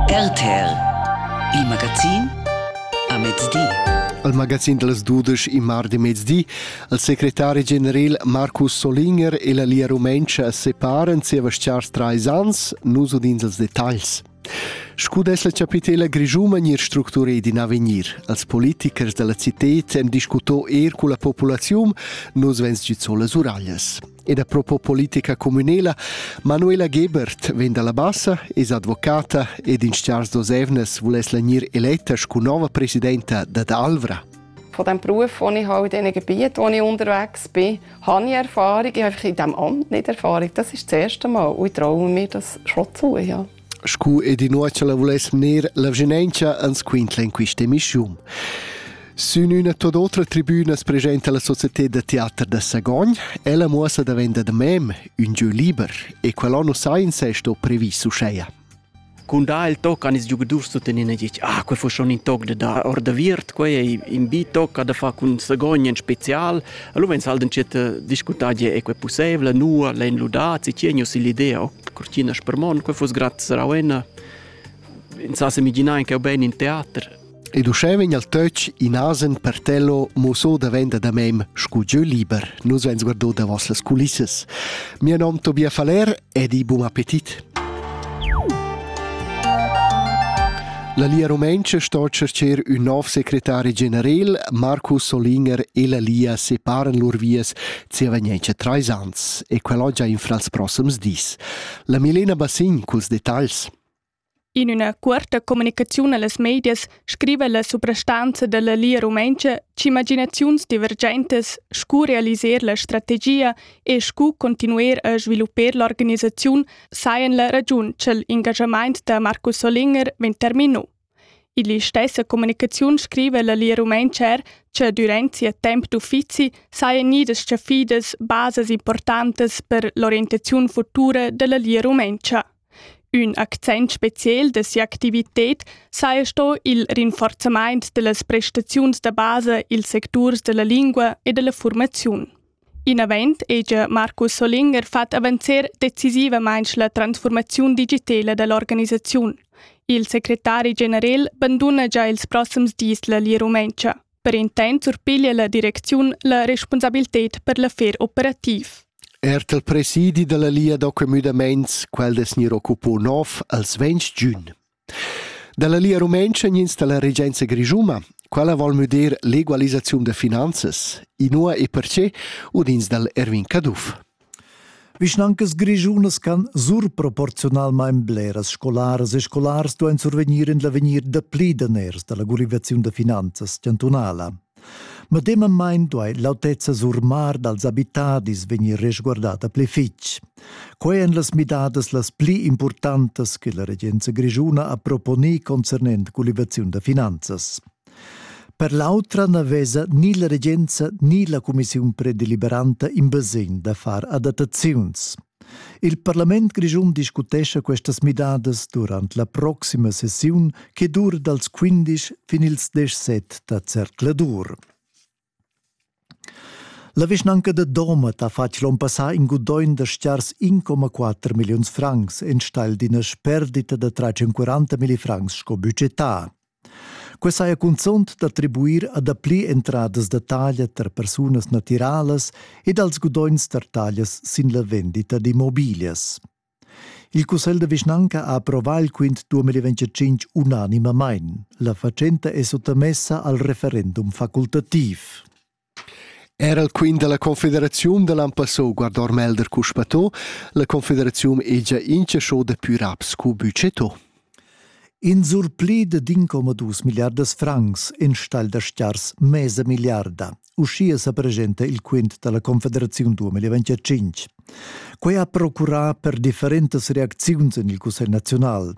RTL Il magazin a mezdi. Al magazin dals dudesch in mardi mezdi, il secretari general Markus Solinger e la Lia Rumentscha separan zieva stars trais ans, nus udins els detagls. Scu dess la chapitela grischuma gnir structureda in avegnir? Als politichers dalla citad hem discuto eir culla populaziun, nus vens giù las uraglias. ed a propos politica communela, Manuela Gebert vegn dalla Bassa, es advocata ed in stars d'osevnes vuless l'anir eletta scu nova presidenta dad Alvra. Von dem Beruf, wo ich halt in diesen Gebieten, wo ich unterwegs bin, habe ich Erfahrung. Ich habe in diesem Amt nicht Erfahrung. Das ist das erste Mal und ich traue mir das schon zu. Ja. Scu ed inua cha la vuless gnir la vschinauncha ans quintla in quista emischiun. Sün üna tuot otra tribüna as presenta la societed da teater da Sagogn. Ella muossa davent da mem ün giö liber e quel anno sainza è sto previs uscheia. Cun dar il toc han ils giugadurs tuttenina ditg ah, quel fo schon in toc da dar or da viert, quei ei in bi toc da far cun Sagogn en spezial, Allora vegn sal d'entschiet discutar gie e quei possibel, nua lein ludar, si tgei nus l'idea, o cortina spermon, quei fuss grad sarauena. In sa semiginar anche ben in teater. Ed uschè vegn al töch in asen per tello muso davenda da mem scu jeu liber. Nus vegns guardo davos las culissas. Mio nom Tobia Faller Ed i bun appetit! La Lia Rumentscha sto tschercher ün nov secretari generel, Marco Solinger e la Lia separan lur vias zievagnientscha trais ans e quell'ho già infra ils prossems dis. La Milena Bassin culs detagls. In üna cuorta comunicaziun allas medias scriva la suprastanza dalla Lia Rumentscha ch'imaginaziuns divergentas scu realiser la strategia e scu continuer a svilupper l'organisaziun sajan la ragiun cha'l ingaschamaint da Marcus Solinger vegn termino. Ill'istessa comunicaziun scriva la Lia Rumentscha er cha durant sia temp d'uffizi sajan gnidas chaffidas basas importantas per l'orientaziun futura dalla Lia Rumentscha. Ün accent speciel da si'activited saja sto il rinforzamaint da las prestaziuns da basa i'ls secturs da la lingua e da la fuormaziun. Inavant hegia Markus Solinger fat avanzer decisivamaing la transfuormaziun digitela da l'organisaziun. Il secretari generel banduna già ils prossims dis la Lia Rumentscha. Per intent surpiglia la direcziun la responsabilitad per l'affer operativ. Er il presidi della Lia d'occupaments, quel des nir occupò nov als 20 giugn. Dalla Lia Rumentscha gnins dalla regenza grischuma, quella vol müder l'egualisaziun da finanzas, inua e perce udins dal Erwin Caduff. Vischnancas grischunas can surproporziunalmain bleras scolaras e scolars duain survegnir en l'avegnir dapli daners da la gurivaziun da finanzas chantunala. Medemamain duai l'autezza surmar dals abitadis vegnir resguardata pli fitg. Quai èn las midadas las pli importantas che la regenza grischuna ha proponì concernent gulivaziun da finanzas. Per l'autra na vesa ni la regenza ni la cumissiun predeliberanta in basegn da far adattaziuns. Il parlament grischun discutescha questas midadas durant la proxima sessiun che dur dals 15 fin ils 17 da zercladur. La vischnanca da Domat ha fatg l'onn passà in gudogn da stgars 1,4 milliuns francs enstagl d'ina sperdita da 340 milli francs sco budgetà. Quai saja cunzunt d'attribuir a dapli entradas da taglia tar persunas natiralas ed als gudogns tar taglias sin la vendita d'immobiglias. Il cussegl da vischnanca ha approvà il quint 2025 unanimamain. La fatschenta è suttamessa al referendum facultativ. Era il quint della Confederaziun da l'an passò guardor Melder cuspatò, la Confederaziun è già inchasciò da pür ab scu budgetto. In surpli de d'incomadus milliardas francs enstagl da stiars mesa milliarda. Uschia sa presenta il quint dalla Confederaziun 2025. Quei ha procurà per differentas reacziuns en il Cussegl naziunal.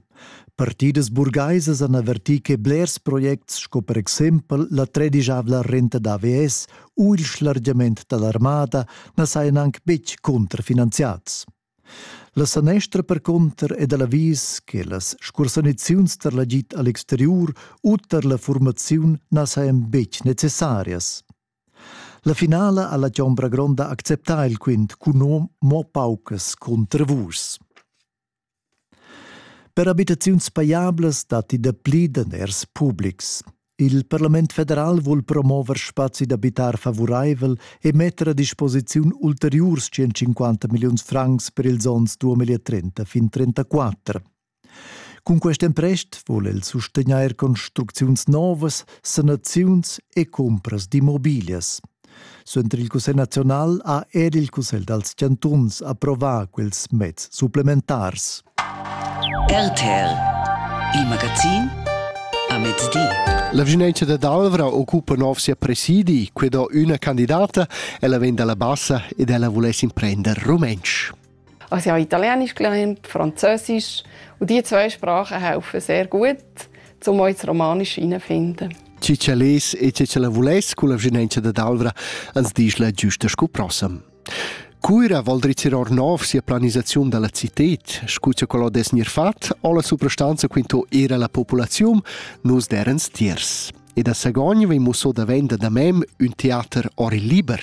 Partidas burgaisas han avvertì che blers projects sco per exempel la tredigiavla renta d'AVS u il schlargiament dall'armada na sajan anc betg contrafinanziads. La sanestra percunter è da l'avis che las scursaniziuns tar l'agid a l'exteriur u tar la furmaziun na sajan betg necessarias. La finala ha la Chombra Gronda acceptà il quint cun mo paucas cuntravurs. Per abitaziuns pajablas datti dapli daners publics. Il parlament federal vul promover spazi d'abitar favuraivel e metter a disposiziun ulteriurs 150 milliuns francs per ils onns 2030 fin 34. Cun quest emprest vul el sustegnair construcziuns novas, sanaziuns e cumpras d'immobiglias. Suenter il Cussegl nazional ha er il Cussegl dals chantuns approvà quels meds supplementars. RTL, il magazin a mezdi. La vigilanza da Dalvra occupa nov sia presidi, quei do üna candidata, ella vegn dalla bassa ed ella vuless imprender rumentsch. Also ich habe Italienisch gelernt, Französisch und diese zwei Sprachen helfen sehr gut, um auch das Romanische herauszufinden. Ci ce les e ce ce la vuless cu la vginenza da Dalvra ans disch la giusta scu prossam. Cuira vol drizzir or nov sia planisaziun dalla cited, scuccia quello des nir fat, o la suprastanza quinto era la populaziun, nus derens tiers. E da Sagogn vei musso da venda da mem un teater ori liber.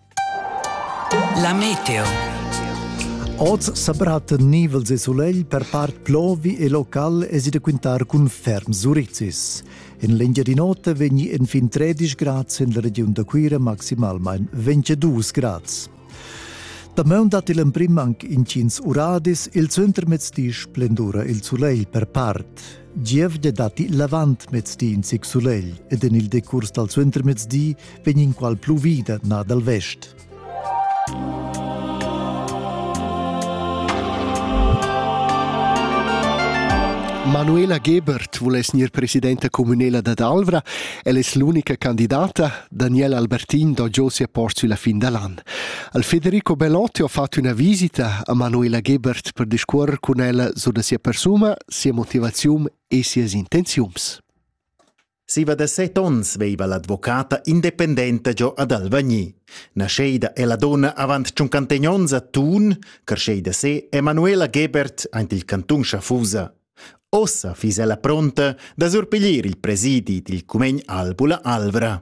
La meteo. Oz sa bratta nivels e sulegl per part plovi e local es da quintar cun ferm surizis. En l'Engiadin'Ota vegni enfin 13 grads en la regiun da Cuira maximalmain 22 grads. Damaun dat il emprim anc intgins uradis, il centrmezdi splendura il sulegl per part. Giev de datti l'avant mezdi in sic sulegl ed en il decurs dal suentermezdi vegn in qual pluvida na dal vest. Manuela Gebert vuless gnir presidenta communela dad Alvra. El es l'unica candidata. Daniela Albertin do giò sia post sulla fin da l'an. Al Federico Bellotti ho fatto una visita a Manuela Gebert per discuorrer con ella su da sia persuma sia motivaziun e sias intenziuns. Siva da set onns veiva l'advocata independenta giò ad Alvagni. Nascheida è la donna avant tschuncantegn onns a Thun, carscheida se Emanuela Gebert aint il cantun Schaffusa. Ossa fiss ella pronta da surpiglier il presidi dil cumegn Albula Alvra.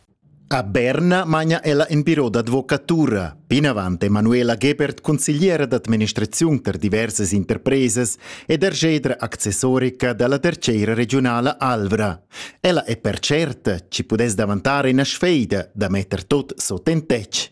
A Berna magna ella in biro d'advocatura. Plinavant è Manuela Gebert consigliera d'administraziun per diversas interpresas ed ergedra accessorica dalla tercera regiunala Alvra. Ella è per certa, ci pudess davantar ina sfeida da metter tot sot en tec.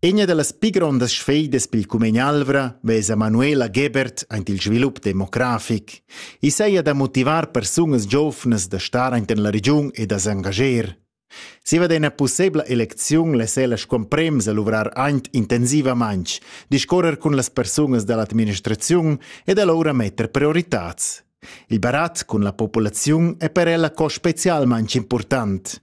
Egna dallas pli grondas sfeidas pil cumegn Alvra vesa Manuela Gebert aint il svilup demografic. I saja da motivar persunas giovnas da star aint en la regiun e da s'engager. Siva d'ena pussebla elecziun les ella scomprems a luvrar aint intensivamaintg, discorrer cun las persunas da l'administraziun ed alloura metter prioritats. Il barat cun la populaziun è per ella co specialmaintg important.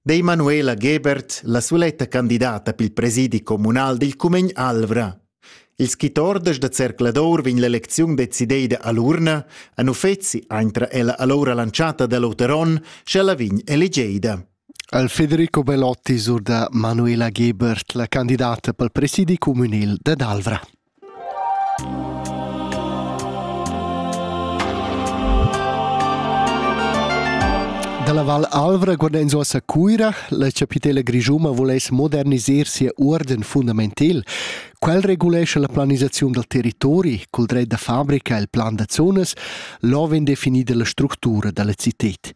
Dei Manuela Gebert la suletta candidata pil presidi communal dil cumegn Alvra. Il skitorders da Zercladour vegn l'elecziun decideida all'urna, an uffeci aintra ella allora lanciata da Luteron, sch'ella vegn elegeida. Al Federico Belotti sur da Manuela Gebert, la candidata pel presidi communal da Alvra. Dalla Val Alvra guardains uoss a Cuira, la chapitela grischuma voless moderniser sia uorden fundamental. Quel regulescha la planisaziun dal territori cul dret da fabrica e il plan da zonas, l'ho vegn definida la structura dalla cited.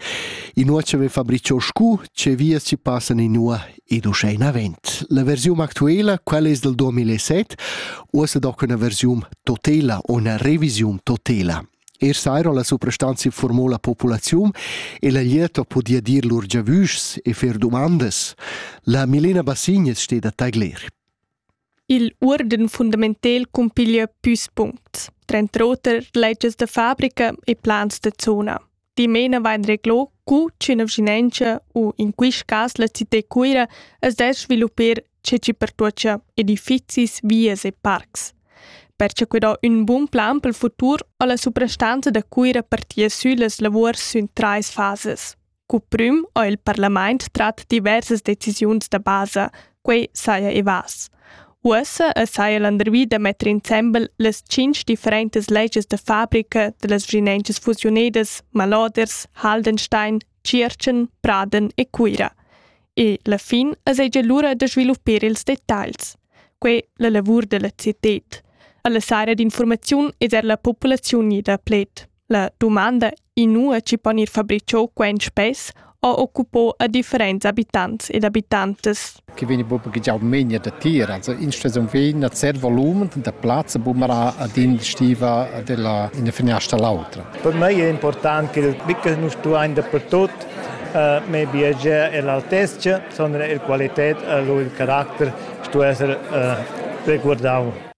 Inua che vegn fabrichò scu, che vias ci passan inua Ed uschè inavant. La versiun actuela, quella es dal 2007, uossa doc üna versiun totela o üna revisiun totela. Er sairo la suprastanza informò la populaziun e la lieto podia dir lur giavüschs e fer dumandas. La Milena Bassignes steht a tagler. Il uorden fundamental cumpiglia püs puncts, tranter oter legias da fabrica e plans da zona. Dimena vain reglò cu ch'üna vschinanza u in quist cas la cità Cuira as dess sviluppar ceci pertuocha edifizis, vias e parcs. Per cha quid ho ün bun plan pel futur ho la suprastanza da Cuira partia süllas lavuors sün trais fasas. Cuprüm ho il parlamaint trat diversas decisiuns da basa, quei saja i vas. Uossa es haja landervi da metter insembel las tschinch differentas legias da fabrica da las vschinenchas fusiunedas Maloders, Haldenstein, Tschiertschen, Praden e Cuira. E la fin es egia lura da sviluppir ils detagls. Quei la lavur da la cited. Alla sara d'informaziun es er la populaziun ida pled. La dumanda inua chi pon ir fabricho quen spess ho occupo a differents abitants ed abitantas. Che vegni proprio già menia da tira. Also instasum vegn a zer volumen da plazza bumara ad in stiva della in finestra l'autra. Per me è important che bitte non stuain dappertut eh, me biager e l'altezza, sondern il qualità e il carattere stu essere eh, reguardau.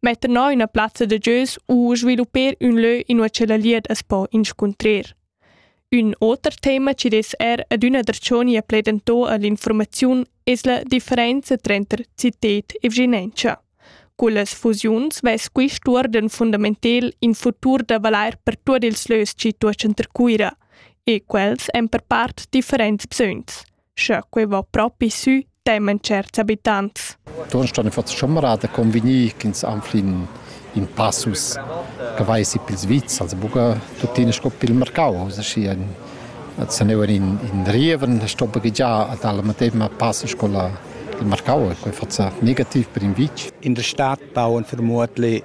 metter no üna plazza da gieus u svilupper ün lö inua che la lied as po inscuntrer. Ün oter tema chi dess er adüna der Cioni a pledentò all'informaziun es la differenza tranter cited e vginentscha. Cullas fusiuns vess quist uorden fundamentel in futur da valair per tuot ils lös chi tuochan ter Cuira, e quels èn per part differents bsögns. Sche quei va propi sü, temen certs habitants. Ton ston fats chamrada convegnir ch'ins anflin in passus che vai si pils vits, also buca tuttina sco pil mercau, aschi ein se neuen in in Rieven stoppa già ad alla medema passo scola il Marcau e quei fatsa negativ per in vitg. In der Stadt bauen vermutlich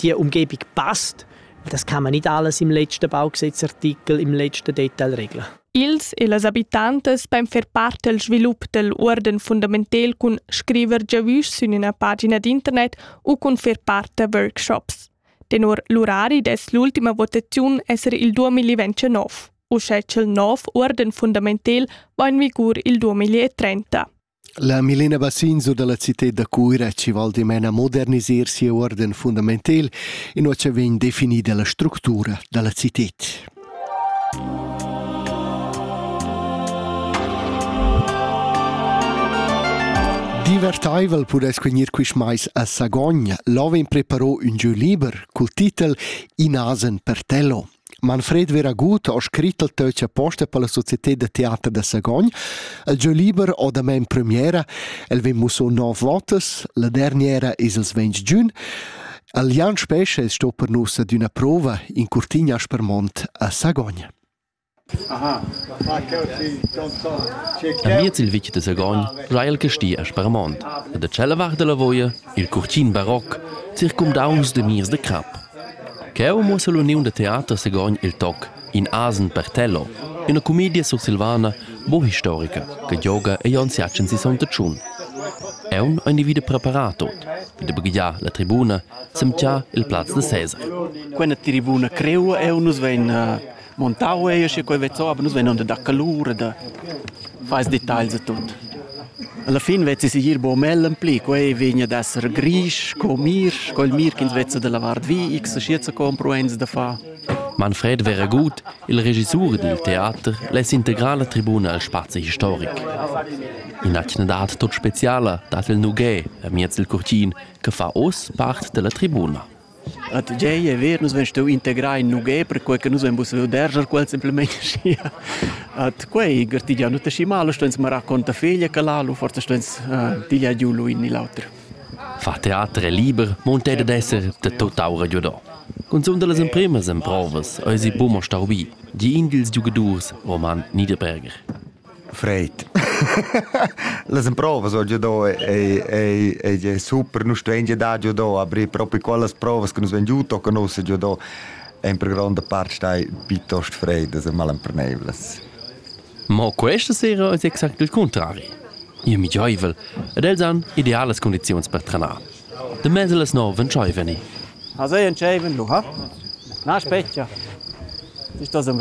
die Umgebung passt, das kann man nicht alles im letzten Baugesetzartikel, im letzten Detail regeln. Ils e las abitantas beim fer part del svilup del uorden fundamental cun scriver giavüsch sün üna pagina d'internet u cun fer part da workshops. Tenor l'urari dess l'ultima votaziun esser il 2029. Uschè ch'el nov uorden fundamental va in vigur il 2030. La Milena Bassin sur dalla citad da Cuira chi val dimena modernisir siu uorden fundamental, inua cha vegn definida la structura dalla citad. Divertaivel pudess gnir quist mais a Sagogn. Là vegn preparo ün jeu liber cul titel In asen per tello. Manfred Veragut ha scrit il töch aposta per la societé da teater da Sagogn. El giö liber ho damain premiera, el vegn musso nov votas, la derniera es ils ventg giun. El Jan Spescha es sto per nus ad üna prova in Curtigna Aspermont a Sagogn. Aha, Amiez il vic de Sagogn già il casti a Spermont e da tschella vart della voia il curtin baroc circumdaunts de mirs de crap. Cheu muossa l'uniun da teater Sagogn il toc In asen per Tello, üna cumedia sursilvana bo historica che gioga ei onns jatschen sisonta tschun. Aunc ha individu preparat tot, vi da baghegiar la tribuna, semtgiar il plaz da Cesar. Quella tribuna creua eu nus vein montau ei sche quei vezzo, aber nus venon da calur e da fais details e tut. Alla fin vezzi sigir bo mellen pli, quei vegna ad esser grisch co mirsch, quel mir ch'ins vezza da lavar vi, x schiet sa compro eins da fa. Manfred wäre gut, il regissur dil teater less integrar la tribuna al spazi historic. In'atgnadat tut speciala dat il Nuguet, amiez il curtin, che fa oz part della tribuna. A tgei e ver nus vein stau integrai in nughè perquei che nus vein pusseiu derscher quels simplemein aschia. Ad quei gartigiau nus aschi mal, stueins mo raccontar feglia che l'alu, forsa stueins eh, tigliar giu lu in ni l'auter. Fa teater è liber, monta ed esser de tot'aura giu do. Cunzunt las empremas emprovas eisi buca mo stau bi, di in dils giugadurs Roman Niederberger. Fred. Las emprovas ho già do ei ei ei è super, nus stuein già dar già do, aber proprio quellas provas che nus vegn giù tocca nus già do en per gronda parte stai piuttosto freddas e malemperneivlas. Ma questa sera è exact il contrario. Io mi gioivel ed els han idealas condizioni per trenar. De mese les no ven gioiveni. Also en gioiven lu ha? Na specchia. Ist das ein